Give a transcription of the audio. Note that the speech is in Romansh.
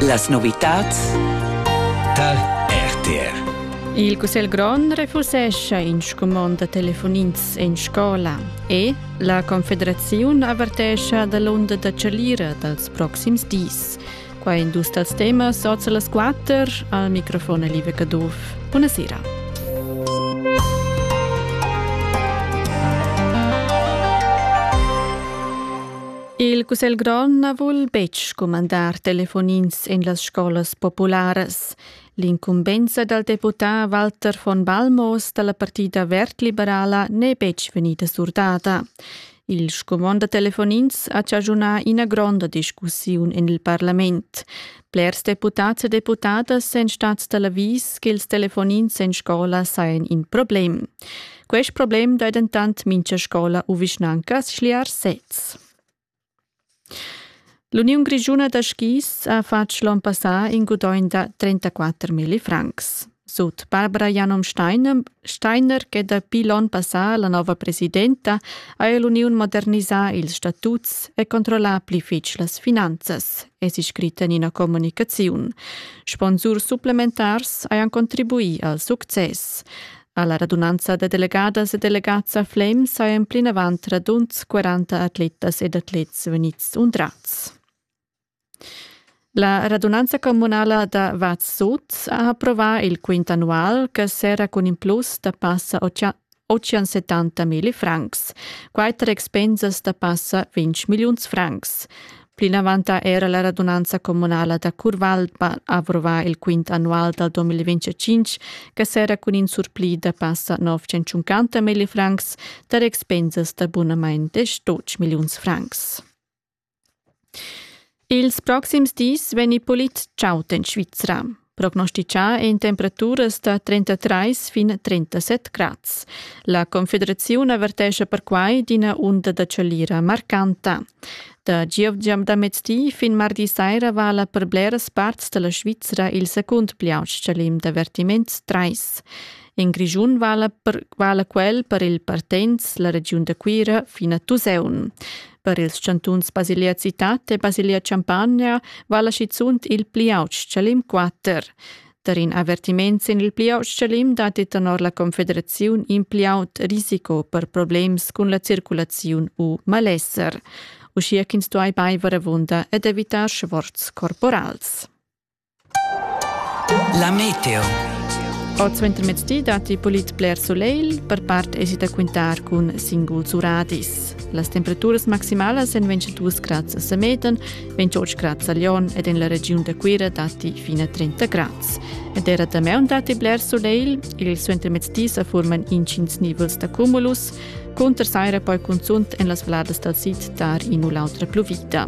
Las novitads tar RTR. Il Cussegl grond refusescha in scumond da telefonins en scola e la Confederaziun avertescha da l'onda da chalira dals proxims dis. Qua in dus dals temas oz a las 4 al microfon Live Caduff. Buonasera. Il cussegl grond na vul betg cumandar telefonins en las scolas popularas. L'incumbensa dal deputà Walter von Balmos da la partida verd-liberala n'è betg vegnida surdada. Il scumond da telefonins ha chaschunà ina gronda discussiun en il parlament. Blers deputats e deputadas èn stads da l'avis ch'ils telefonins en scola sajan in problem. Quest problem dai dentant mincha scola u vischnanca schliar sez. L'Uniun Grischuna da skis ha fatg l'on passà in gudogn da 34 milli francs. Sut Barbara Janom Steiner, Steiner che dapi l'onn passà la nova presidenta ha l'uniun modernisà ils statuts e controllà pli fitg las finanzas, es scrit in ina comunicaziun. Sponsurs supplementars hajan contribuì al success. Alla radunanza da delegadas e delegats a Flem sajan plinavant radunds 40 atletas ed atlets venids undrats. La radunanza communala da Vaz Sut ha approvà il quint annual che serra cun in plus da passa 870.000 francs, quai tar expensas da passa 20 milliuns francs. Plinavant ha era la radunanza communala da Curvalba approvà il quint annual dal 2025 che serra cun in surpli da passa 950.000 francs tar expensas da bunamain 18 milliuns francs. Ils proxims dis vegni pulit tschut en Svizra. Prognostitgà ein temperaturas da 33 fin 37 grads. La Confederaziun avertescha perquai d'ina unda da chalira marcanta. Da gievgiam da mezdi fin mardi saira vala per bleras parts dalla Svizra il secund bliaus chalim d'avertiments 3. In Grischun vala, per, vala quel per il Partenz, la regiun da Cuira fin a Tuseun. Per ils chantuns Basilea Citate e Basilea Champagna vala schizunt il pli aut chalim 4. Tar in avertiment sin il pli aut chalim datti tenor la Confederaziun in pli aut risiko per problems cun la circulaziun u malesser, uschia ch'ins duai baiver avunda ed evitar sforz corporals. La meteo. Oz ventermezdi datti polit bler solegl, per part èsi da quintar cun singuls uradis. Las temperaturas maximalas èn 22 grads a Samedan, 28 grads a Lyon ed en la regiun da Cuira datti fino a 30 grads. Ed era damaun datti bler solegl, il suentermezdi sa forman intgins nivels da cumulus, cunter saira poi cunzunt en las valladas dal sid dar in u l'autra pluvita.